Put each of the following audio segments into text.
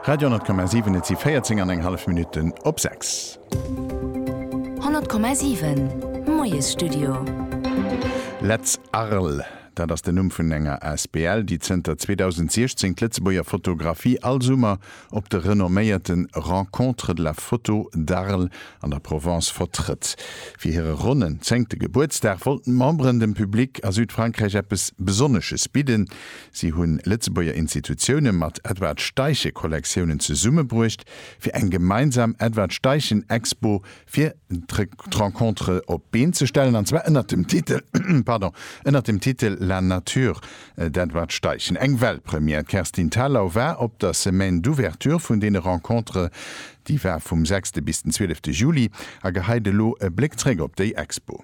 Radio 10,7 Et si 14 an eng hallef Minutten op 6. 100,7 Moiesstudio. Letz Arles, dat ass den Numm vun enger Asbl, déi zënter 2016 d'Lëtzebuerger Fotografie all Summer op de renomméierten Rencontres de la photo d'Arles an der Provence vertrëtt. Fir hire ronnen zéngte Gebuertsdag wollten d'Memberen dem Public a Südfrankräich eppes Besonnesches bidden. Si hunn Lëtzebuerger Institutioune mat Edward Steichen-Kollektiounen zesummebruecht fir eng gemeinsam Edward Steichen Expo fir d'Rencontre op d'Been ze stellen, an zwar ënnert dem Titel, pardon, ënnert dem Titel La nature d'Edward Steichen. Eng Weltpremière. D'Kerstin Thalau war op der Semaine d'ouverture vun deene Rencontrë, déi war vum sechste bis den zwielefte Juli, a geheit elo e Bléck zréck op déi Expo.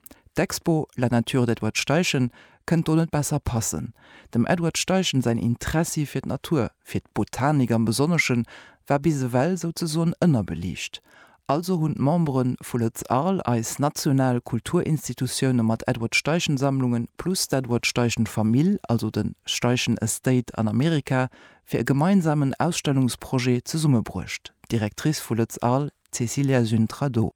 D'Expo La nature d'Edward Steichen kënnt do net besser passen. Dem Edward Steichen säin Interessi fir d'Natur, fir d'Botanik am Besonneschen, war bis ewell souzesoen ënnerbeliicht. Also hunn d'Membere vu Lët'z Arles, eis national Kulturinstitutioune mat Edward Steichen Sammlungen, plus d'Edward Steichen Famill, also de Steichen Estate an Amerika, fir e gemeinsamen Ausstellungsprojet zesummebruecht, d'Directrice vu Lët'z Arles, d'Cécilia Züntra do.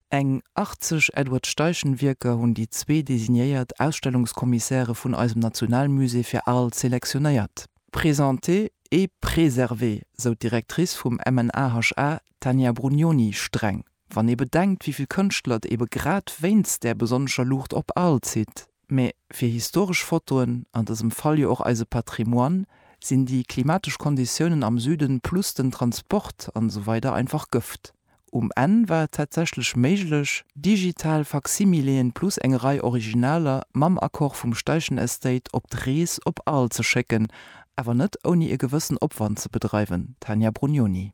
Eng 80 Edward Steichen-Wierker hunn déi zwee designéiert Ausstellungskommissäre vun eisem Nationalmusée fir Aalt selektionéiert. Présenter et préserver, sou d'Directrice vum MNAHA, d'Tania Brugnoni, streng, wann ee bedenkt, wéi vill Kënschtler et ebe grad wéinst där besonnescher Luucht op Aalt zitt. Mä fir historesch Fotoen, an dësem Fall jo och eise Patrimoine, sinn déi klimatesch Konditiounen am Süden plus den Transport an esou weider einfach Gëft. Um Enn war et tatsächlech méiglech, digital Faksimileen plus eng Rei Originaler mam Accord vum Steichen Estate op d'Rees op Arles ze schécken, awer net ouni e gewëssen Opwand ze bedreiwen, Tania Brugnoni.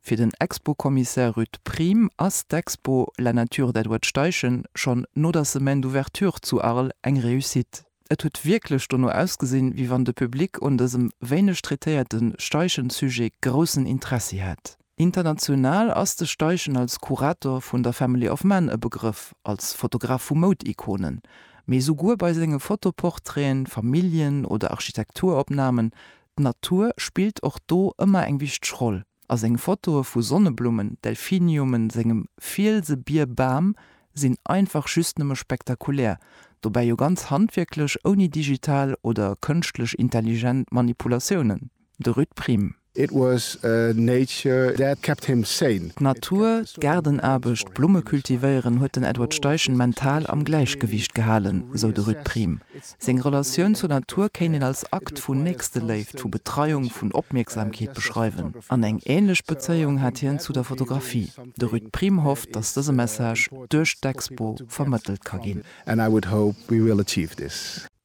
Fir den Expo-Kommissär Ruud Priem ass d'Expo La Nature d'Edward Steichen schonn no der Semaine d'Ouverture zu Arles eng Réussite. Et huet wierklech dono ausgesinn, wéi wann de Public un dësem wéineg traitéierte Steichen-Sujet groussen Interessi hätt. International ass de Steichen als Kurator vun der Family of Man e Begrëff, als Fotograf vu Moud-Ikonen, mee souguer bei senge Fotoportraite, Familljen oder Architekturopnamen D'Natur spillt och do ëmmer eng wichteg Roll a seng Fotoe vu Sonneblummen, Delphiniumen, sengem Fielse, Bier, Bam sinn einfach just nëmme spektakulär, dobäi jo ganz handwierklech, ouni digital oder kënschtlech intelligent Manipulatiounen. De Ruud Priem. It was nature that kept him sane. D'Natur, d'Gaardenaarbecht, d'Blumme cultivéieren huet den Edward Steichen mental am Gläichgewiicht gehalen, sou de Ruud Priem. Seng Relatioun zur Natur kéint een als Akt vun Nächsteléift, vu Betreiung, vun Opmierksamkeet beschreiwen. An eng änlech Bezéiung hat hien zu der Fotografie. De Ruud Priem hofft, datt dëse Message duerch d'Expo vermëttelt ka ginn.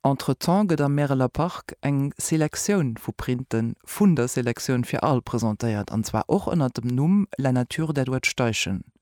Entretemps gëtt am Märeler Park eng Selektioun vu Printen vun der Selektioun fir Al presentéiert, an zwar och ënnert dem Numm La Nature d'Edward Steichen.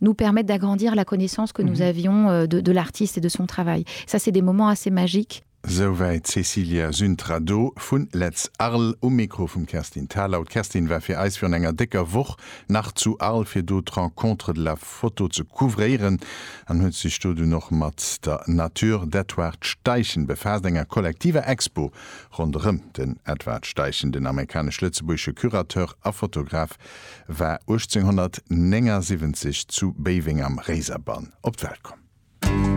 nous permettent d'agrandir la connaissance que nous avions de de l'artiste et de son travail. Ça c'est des moments assez magiques. Souwäit d'Cecilia Züntrado vun Letz Arles um Mikro vum Kerstin Thalau. D'Kerstin war fir eis virun enger décker Woch nach zu Arles fir do d'Rencontre de la photo ze couvréieren an huet sech do dunn och mat der Natur d'Edward Steichen befaasst, enger kollektiver Expo ronderëm den Edward Steichen. Den amerikanesch-lëtzebuergesche Curateur a Fotograf war 1879 zu Béiweng am Réiserbann op d'Welt komm.